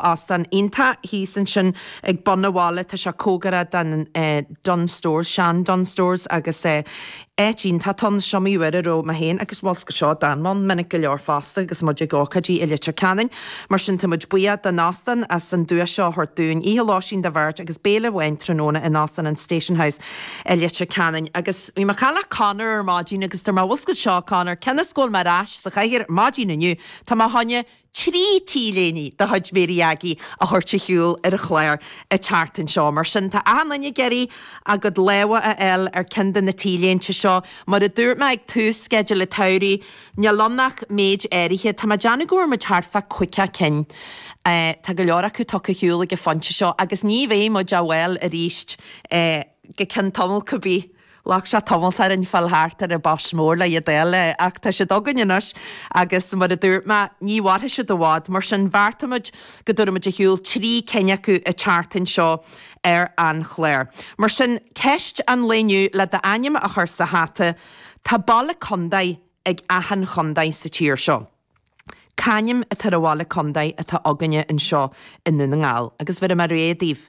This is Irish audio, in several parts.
óstán iontach thíos ansin ag bun an bhaile, tá sé comhgarach don Dunnes Stores, sean Dunnes Stores agus áit iontach ann, is iomaí uair a raibh mé féin agus, bhfuil fhios agat seo d'fhan mé ann minic go leor fosta agus muid ag ócáidí i Leitir Ceanainn, mar sin tá muid buíoch den óstán as an duais seo a thabhairt dúinn. Oíche lóistín do bheirt agus béile amháin tráthnóna in Óstán an Station House i Leitir Ceanainn agus. Bhí mé ag caint le Conor ar maidin agus dúirt mé, bhfuil fhios agat seo a Conor, cionn is go bhfuil mé ar ais sa chathaoir ar maidin inniu, tá mé ag dul trí t-léine de chuid Mary Aggie a thabhairt ar shiúl ar an chlár an tseachtain seo. Mar sin, tá achan duine ag iarraidh a gcuid lámha a fháil ar ceann de na t-léinte seo. Mar a dúirt mé ag tús Sceideal a' tSamhraidh, níl ann ach méid áirithe. Tá mé ag déanamh go bhfuair muid thart fá chaoga cinn. Tá go leor acu tugtha ar shiúl ag an phointe seo agus ní bheidh muid á bhfáil aríst go ceann tamall, cibith. Ghlac sé tamalt orainn fáil thart ar an boss mór le iad a fháil ach tá siad againn anois agus mar a dúirt mé, ní mhairfidh siad i bhfad, mar sin bheartaigh muid go dtabharfadh muid ar shiúl trí cinn acu an tseachtain seo ar an chlár. Mar sin, ceist an lae inniu, le d'ainm a chur sa hata, Tá baile contae ag achan chontae sa tír seo. C'ainm atá ar an bhaile contae atá againne anseo i nDún na nGall agus tabharfaidh mé rogha daoibh.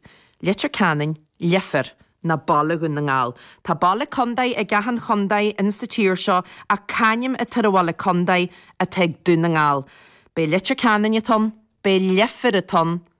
Leitir Ceanainn, Leifear, ná Baile Dhún na nGall. Tá baile contae ag achan chontae ins sa tír seo ach c'ainm atá ar an bhaile contae atá ag Dún na nGall. Ab é Leitir Ceanainn atá ann, ab é Leifear atá ann,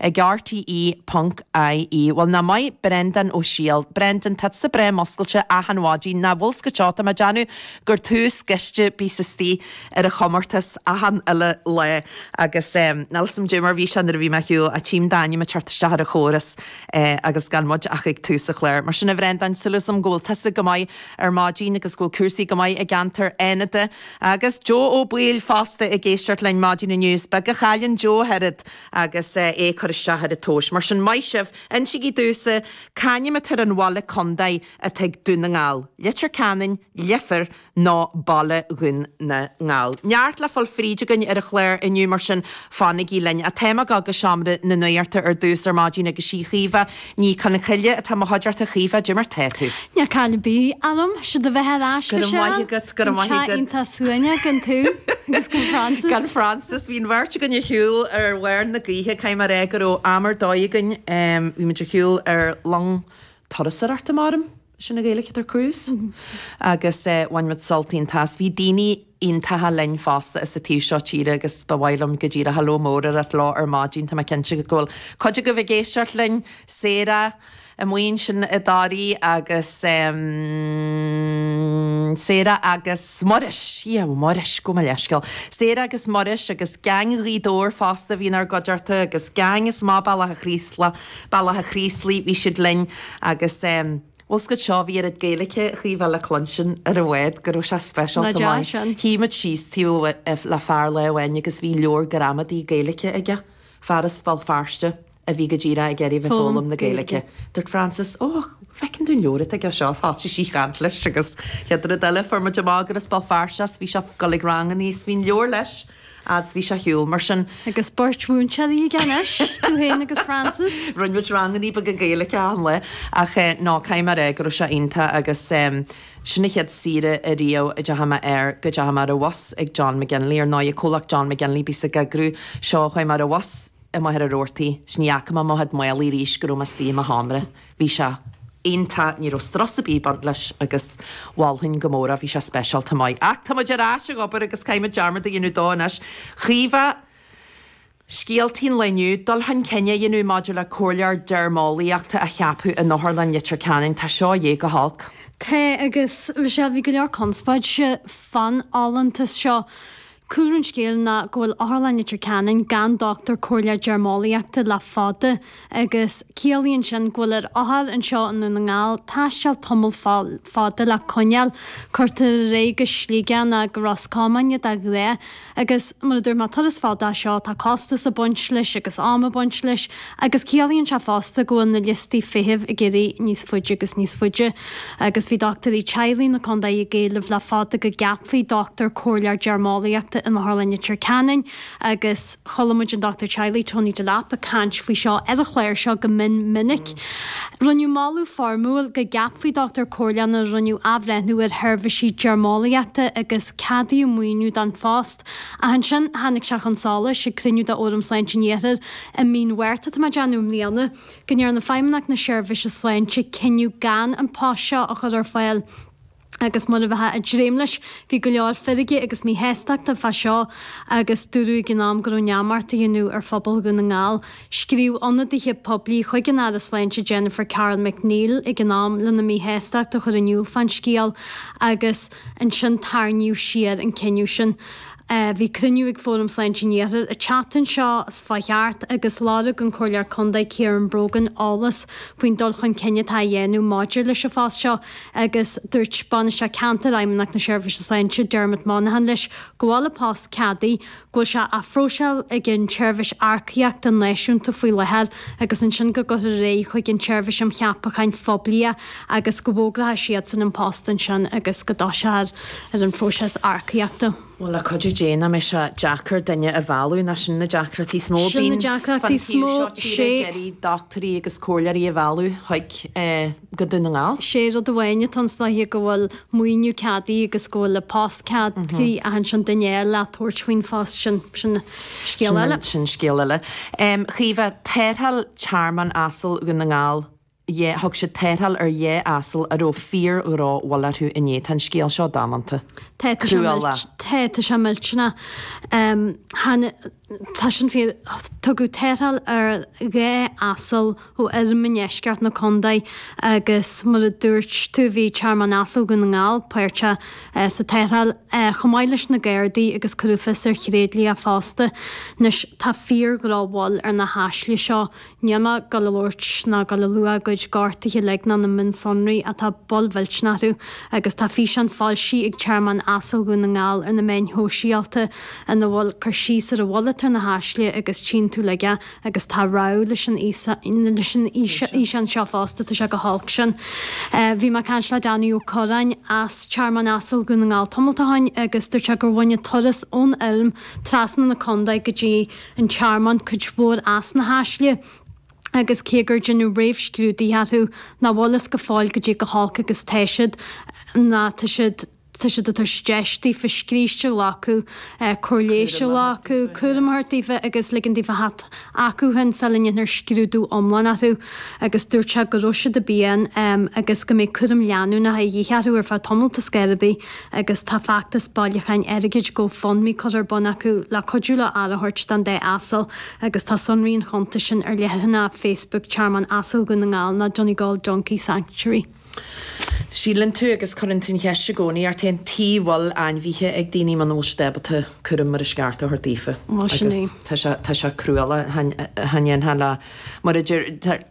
ag RTÉ.ie Bhuel ná maith Brendan Ó Siadhail. Brendan, tá tusa breá muscailte achan mhaidin ná bhfuil fhios agat tá mé ag déanamh gur tú is gaiste a bíos istigh ar an chomórtas achan uile lá agus níl fhios agam caidé mar a bhí sé nuair a bhí mé ar shiúl ach tím d'ainm ag teacht isteach ar an chóras agus gan muid ach ag tús an chláir. Mar sin a Bhrendan, súil agam go bhfuil tusa go maith ar maidin agus go bhfuil cúrsaí go maith i gceantar Fhánada agus Joe Ó Baoill fosta ag éisteacht linn maidin inniu. Is beag a chailleann Joe ach oiread agus é ag cur isteach ar an tomhas. Mar sin, maith sibh! Insigí domhsa c'ainm atá ar an bhaile contae atá ag Dún na nGall, Leitir Ceanainn, Leifear, nó Baile Dhún na nGall? Neart le fáil fríd againn ar an chlár inniu, mar sin fanaigí linn. Ach tá mé ag gabháil go Seomra na Nuachta ar dtús ar maidin agus is í Caoimhe Ní Chonchoille atá i mo chuideachta, a Chaoimhe caidé mar tá tú. Níl caill ar bith orm, 'sé do bheatha ar ais, Go raibh maith Michelle, agat, go raibh an maith agat. teaghain tá suaimhneach gan tú agus gan Frances. Gan Frances, bhí an bheirt againn ar shiúl ar bharr na gaoithe, caithfidh mé a rá go raibh am ar dóigh againn, bhí muid ar shiúl ar long turasóireachta, a mairim. sin na Gaeil ag dul ar cruise agus bhain muid sult iontach as. Bhí daoine iontacha linn fosta as an taobh seo tíre agus ba mhaith liom go díreach hello mór a ráit leo ar maidin. Tá mé cinnte go go bhfuil cuid agaibh ag éisteacht linn, Sarah, an bhuíon sin i dToraí agus em Sarah agus Muiris, yeah Muiris, gabh mo leithscéal, Sarah agus Muiris agus gang Ghaoth Dobhair fosta a bhí inár gcuideachta agus gang as Maigh gCromtha Bealach a' Chraoslaigh Bealach a' Chraoslaigh, bhí siad linn agus ehm, bhuel cogar seo, bhí oiread Gaeilice a Chaoimhe le cluinstin ar an mbád go raibh sé speisialta maith. Nach deas sin. Shuigh muid síos taobh le fear lá amháin agus bhí leabhar gramadaí Gaeilice aige, fear as Béal Feirste a bhí go díreach ag iarraidh a bheith ag foghlaim na Gaeilice. Dúirt Frances, Ó, feiceam dúinn an leabhar atá aige seo agus thosaigh sí ag caint leis agus an chéad rud eile fuair muid amach gur as Béal Feirste é, bhí sé ag dul ag rang aníos, bhí an leabhar leis. Fhad's bhí sé ar shiúl mar sin. Agus beirt mhúinteoirí aige anois, tú féin agus Frances. Rinne muid rangannaí beaga Gaeilge achan lá ach eh no caithfidh mé a ráit go raibh sé iontach agus em sin an chéad saoire ariamh a dteachaigh mé air go dteachaigh mé ar an bhus ag John McGinley ar ndóighe comhlacht John McGinley a bhíos ag eagrú seo chuaigh mé ar an bhus amuigh ar an Robhartaigh 's ní fhaca mé mo chuid málaí arís go raibh mé astoigh i mo sheomra. Bhí sé. iontach, ní raibh strus ar bith ag baint leis agus mholfainn go mór é, bhí sé speisialta maith. Ach tá muid ar ais ag obair agus caithfidh mé dearmad a dhéanamh de anois. Caoimhe, scéaltaí an lae inniu, dul chun cinn á dhéanamh maidir le comhairleoir deirmeolaíochta a cheapadh in Otharlann Leitir Ceanainn, tá seo de dhíth go holc. Tá agus Michelle, bhí go leor conspóid fán fholúntas seo. Cúlra an scéil ná go bhfuil Otharlann Leitir Ceanainn gan dochtúir comhairleoir deirmeolaíochta le fada agus ciallaíonn sin go bhfuil ar othair anseo i nDún na nGall taisteal tamall fada le coinneáil cuirtear iad go Sligeach nó go Ros Comáin nó Gaillimh agus mar a dúirt mé turas fada é seo tá costas ag baint leis agus am ag baint leis Agus ciallaíonn sé fosta go bhfuil na liostaí feithimh ag éirí níos faide agus níos faide. Agus bhí dochtúirí teaghlaigh na contae ag éileamh le fada go gceapfaí dochtúir comhairleoir deirmeolaíochta in Otharlann Leitir Ceanainn agus chuala muid an dochtúir teaghlaigh Tony Delap ag caint faoi seo ar an chlár seo go mion minic. Rinneadh moladh foirmiúil go gceapfaí dochtúir comhairleoir nuair a rinneadh athbhreithniú ar sheirbhísí deirmeolaíochta agus ceadaíodh maoiniú don phost. Ach ansin tháinig sé chun solais ag cruinniú de Fhóram Sláinte an Iarthair I mí an Mhárta atá mé ag déanamh i mbliana, go ndearna Feidhmeannacht na Seirbhíse Sláinte cinneadh gan an post seo a chur ar fáil agus mar a bheifeá ag dréim leis, bhí go leor feirge agus míshástachta fá seo agus dúradh ag an am go raibh neamart á dhéanamh ar phobal Dhún na nGall. Scríobh ionadaithe poiblí chuig an Aire Sláinte Jennifer Carroll MacNeill ag an am lena míshástacht a chur in iúl fán scéal agus ansin tarraingíodh siar an cinneadh sin. Bhí cruinniú ag Fóram Sláinte an Iarthair an tseachtain seo a chuaigh thart agus lorg an Comhairleoir Contae Kieran Brogan eolas faoin dul chun cinn atá á dhéanamh maidir leis an phost seo agus dúirt Bainisteoir Ceantair Fheidhmeannacht na Seirbhíse Sláinte, Dermot Monaghan leis go bhfuil an post ceadaithe, go bhfuil sé á phróiseáil ag an tSeirbhís Earcaíochta Náisiúnta faoi láthair agus ansin go gcuirfear é chuig an tSeirbhís um Cheapacháin Phoiblí a agus go bhfógrafadh siadsan an post ansin agus go dtoiseofar ar an phróiseas earcaíochta. Bhuel, le cuidiú Dé, nach mbeidh sé deacair duine a mhealladh, nach sin na deacrachtaí is mó a Sin na bíonns deacrachtaí fan is taobh mó, seo tíre ag sé. iarraidh dochtúirí agus comhairleoirí a mhealladh chuig go Dún na nGall. Sé rud amháin atá anns na go bhfuil maoiniú ceadaithe agus go bhfuil an post ceadaithe ach ansin duine a fháil a thabharfas faoin phost sin, sin sin scéal eile. Em, Caoimhe, Tarrtháil Tearmann Asal Dhún na nGall. ie. Thug siad tarrtháil ar dhá asal a raibh fíor-dhrochbhail orthu inné. Tá an scéal seo damanta. Tá, tá sé cruálach. Tá, tá sé millteanach. Tháinig, tá sin fíor. Tugadh tarrtháil ar dhá asal ó fheirm i ndeisceart na condae agus mar a dúirt tú bhí Tearmann Asal Dhún na nGall páirteach sa tarrtháil chomh maith leis na Gardaí agus cuireadh fios ar thréidlia fosta. Anois, tá fíor-dhrochbhail ar na hasail seo. níl mé ag gabháil a labhairt ná ag gabháil a lua a gcuid gortuithe uilig ná na mionsonraí atá bhuel, millteanach, orthu agus tá físeán foilsithe ag Tearmann Asail Dhún na nGall ar na meáin shóisialta ina bhfuil cur síos ar an bhail atá ar na hasail agus tchíonn tú leat iad agus tá rabhadh leis an fhíseán seo fosta tá sé go holc sin bhí mé ag caint le Danny Ó Corráin as Tearmann Asail Dhún na nGall tamalt ó shin agus dúirt sé gur bhain an turas ón fheirm trasna na contae go dtí an tearmann cuid mhór as na hasail agus cé go ndearnadh réamhscrúdaithe orthu nach bhfuil a fhios go fóill goidé go holc agus tá siad ná tá siad tá siad ag tabhairt deis daofa scríste a ghlacadh, cóir leighis a ghlacadh, cúram a thabhairt daofa agus ligean daofa theacht chucu féin sula ndéanfar scrúdú iomlán orthu agus dúirt sé go raibh siad i bpian agus go mbeidh cúram leanúnach de dhíth orthu ar feadh tamaill toisc gurb í agus tá feachtas bailiúcháin airgid GoFundMe curtha ar bun acu le cuidiú leo aire a thabhairt don dá asal agus tá sonraí an chuntais sin ar leathanach Facebook Tearmann Asail Dhún na nGall ná Donegal Donkey Sanctuary. Síleann tú agus cuireann tú an cheist i gcónaí, ort féin, tuige a bhfuil ainmhithe ag daoine muna bhfuil siad ábalta cúram mar is ceart a thabhairt daofa? Bhuel, sin é. Agus tá sé cruálach, do na hainmhithe, mar a deir,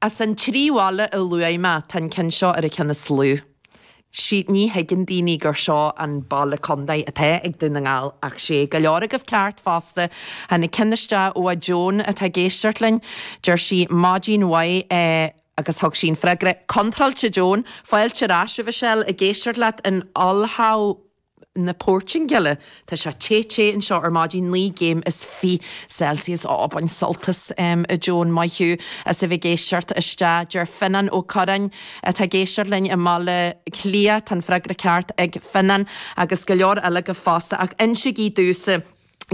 As an trí bhaile a luaigh mé, tá an ceann seo ar an gceann is lú. Sea, ní thuigeann daoine gur seo an baile contae atá ag Dún na nGall, ach sea, go leor agaibh ceart fosta. Tháinig ceann isteach ó Joan atá ag éisteacht linn. Deir sí, Maidin mhaith, agus thug sí an freagra contráilte, Joan, fáilte ar ais, a Mhichelle, ag éisteacht leat in ollhaul. na Portingile. Tá sé te te anseo ar maidin, naoi gcéim is fiche Celsius. Ó, bain sult as, a Joan, maith thú as a bheith ag éisteacht isteach. Deir Fionnán Ó Corráin, atá ag éisteacht linn i mBaile Átha Cliath, Tá an freagra ceart ag Fionnán, agus go leor eile, fosta, ach insigí dúinn.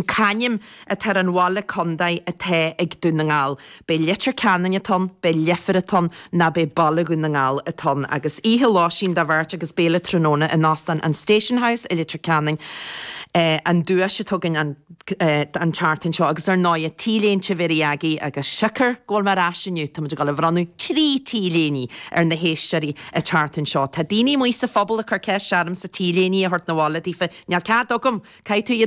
c'ainm atá ar an bhaile chontae atá ag Dún na nGall. An é Leitir Ceanainn atá ann, an é Leifear atá ann, nó an é Baile Dhún na nGall atá ann. Agus oíche lóistín do bheirt agus béile tráthnóna in Óstán an Station House i Leitir Ceanainn an duais atá againn an tseachtain seo. Agus ar ndóigh, tá t-léinte Mhary Aggie agus siocair go bhfuil mé ar ais inniu, tá muid ag dul a bhronnadh trí t-léiní ar na héisteoirí an tseachtain seo. Tá daoine amuigh sa phobal ag cur ceist ormsa t-léiní a thabhairt 'na bhaile daofa, níl cead agam! Caithfidh tú iad a.